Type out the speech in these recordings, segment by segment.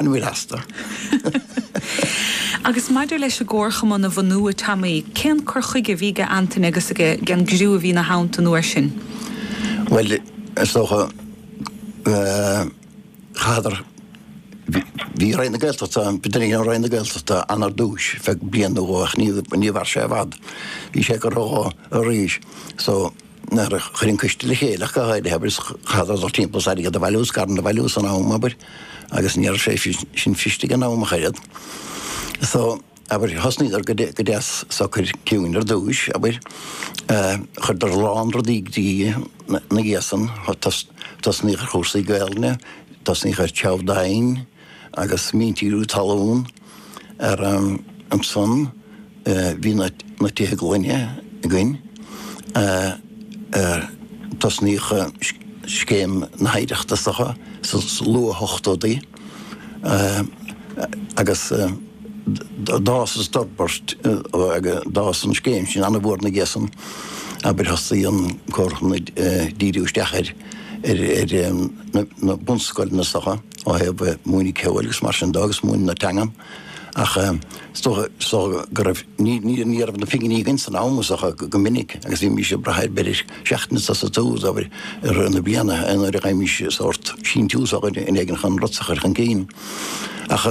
An bhfuil astu? Agus maidir leis an gcomharchumann a bhunú i Taimí, cén cur chuige a bhí ag Antaine agus ag an gcriú a bhí ina theannta an uair sin? Bhuel, is dócha, chaitheadar, bhí Roinn na Gaeltachta, bhí duine ag Roinn na Gaeltachta ann ar dtúis, ar feadh bliain nó dhó ach ní mhair sé i bhfad. Bhí sé go rabhadar arís so, nuair a chuir an coiste le chéile ach go háirithe, abair chaitheadar dul timpeall is airgead a bhailiú is scaireanna a bhailiú san am, abair, agus ní raibh sé sin fuirist ag an am ach oiread. So, abair, thosnaíodar go go deas socair ciúin ar dtúis, abair, chuireadar a lán rudaí go dtí ina dhiaidh san, thosnaíodh ar chúrsaí Gaolainne, thosnaíodh ar threabhadh domhain, agus míntíriú talún. Ar an ansan bhí na tithe gloine againn tosnaíodh scéim na hoidhreachta sucha sa luathochtóidí agus d'fhás is d'fhorbair d'fhás an scéim sin an-mhór ina dhiaidh san. Abair thosnaigh an Comharchumann ag díriú isteach ar na bunscoileanna sucha. ó thaobh múineadh ceoil agus mar sin de agus múineadh na teangan ach is dócha so go raibh ní ní ní raibh na pinginí againn san am so go minic agus bhí bímis ag brath ar b'fhéidir seachtain sa saothar i rith na bliana nuair a chaithimis sórt síntiús ó dhuine éigin chun rudaí a chur chun cinn ach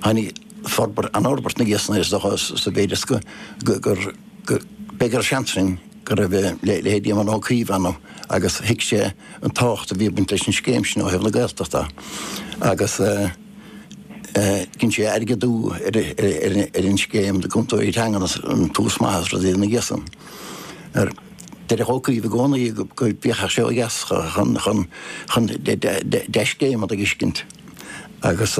tháinig forbairt an fhorbairt ina dhiaidh san is dócha sa mhéid is go gur go mb'fhéidir ansin go raibh leithéidí Éamon Ó Cuív ann agus thuig sé an tábhacht a bhí ag baint leis an scéim sin ó thaobh na Gaeltachta agus dhein sé airgeadú ar an scéim na gcúntóirí teanga agus an-tús maith is rudaí ina dhiaidh san. Deireadh Ó Cuív i gcónaí go bhféachfadh sé ó dheas chun dea-scéimeanna a fheiscint agus.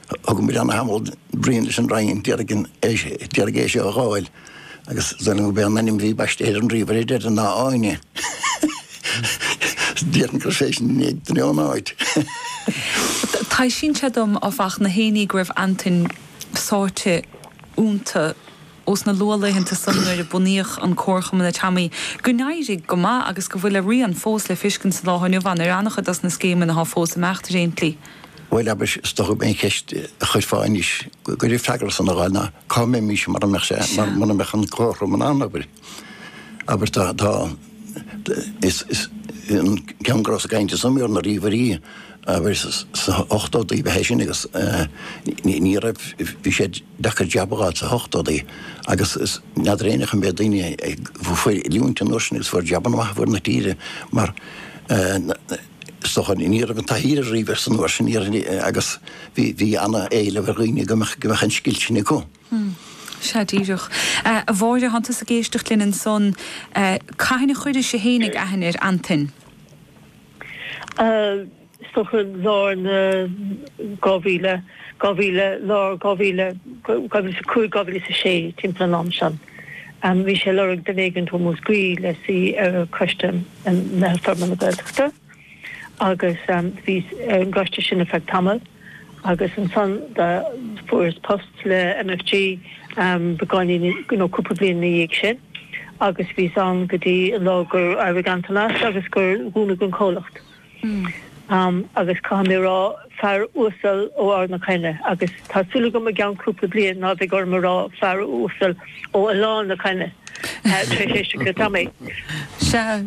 Thóg sé an-tamall, briain leis an Roinn airgead seo a fháil agus d'fhoghlaim gurb é an ainm a bhí baiste ar an ríomhaire ar deireadh ná Áine. Déarfainn gur inis ainm duine ón áit. Taispeánann sé dom, áfach, na hairíonna go raibh Antaine sáite iontu. ós na luathlaethanta san nuair a bunaíodh an Comharchumann a Taimí, gur éirigh go maith agus go bhfuil a rian fós le feiscint sa lá atá inniu ann ar an-chuid dos na scéimeanna atá fós ag imeacht déarfainn. Bhuel, abair, is dócha gurb é an cheist a chuirfeá anois, go dtí freagra san a fháil ná, cá mbeimís mara mbeadh sé, mura mbeadh an Comharchumann ann, abair. Abair, tá, tá, Is ceann go rabhas ag caint ansan ar na ríomhairí sna hochtóidí ba é sin agus ní raibh, bhí sé deacair jab a fháil sna hochtóidí agus n'fheadar éinne an mbeidh daoine a fuair oiliúint an uair sin agus fuair jabanna maithe ar fuaid na tíre mar is dócha ní raibh an taithí ar an ríomhaire an uair sin agus bhí ana éileamh ar dhaoine go mbeadh an scil sin acu. Hmm. Sea, díreach. A Mháire, tánn tusa ag éisteacht linn ansan. Cathain a chuiris-se féinig aithne ar Antain? Is dócha, lár na 2000, 2000, lár 2000, 2005, 2006, timpeall an am san. Bhí sé ag lorg duine éigin ó Mhúscraí le suí ar choiste Meitheal Forbartha na Gaeltachta. agus bhíos ar an gcoiste sin ar feadh tamaill agus ansan fuaireas post le MFG beagáinín nó cúpla bliain ina dhiaidh sin agus bhíos ann go dtí an lá gur éirigh Antain as agus gur dúnadh an comhlacht agus caithfidh mé a rá, fear uasal ó Ard na Caithne agus tá súil agam i gceann cúpla bliain ná bheidh orm a rá fear uasal ó Oileán na Caithne tar éis éisteacht le Tommy. Sea.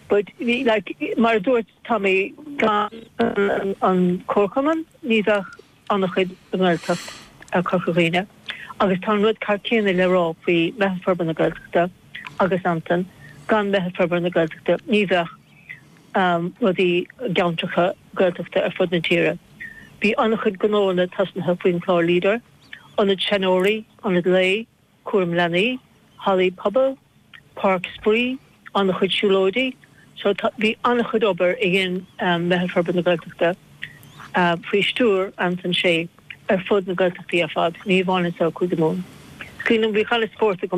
But, like, mar a dúirt Tommy, gan an comharchumann ní bheadh an-chuid den Ghaeltacht i gCorca Dhuibhne. Agus tá an rud ceannann céanna le rá faoi Meitheal Forbartha na Gaeltachta agus Antain, gan Meitheal Forbartha na Gaeltachta ní bheadh rudaí i gceantracha Gaeltachta ar fud na tíre. Bhí an-chuid gnóanna tosnaithe faoin chlár Leader, ionad seanóirí, ionad lae, cúram leanaí, hallaí pobail, páirc spraoi, an-chuid siúlóidí, so tá, bhí an-chuid obair a dhein Meitheal Forbartha na Gaeltachta, faoi stiúir Antain Uí Shé, ar fud na Gaeltachtaí ar fad, ní hamháin anseo i gCúige Mumhan. Scaoileann, bhí chuile spórt ag.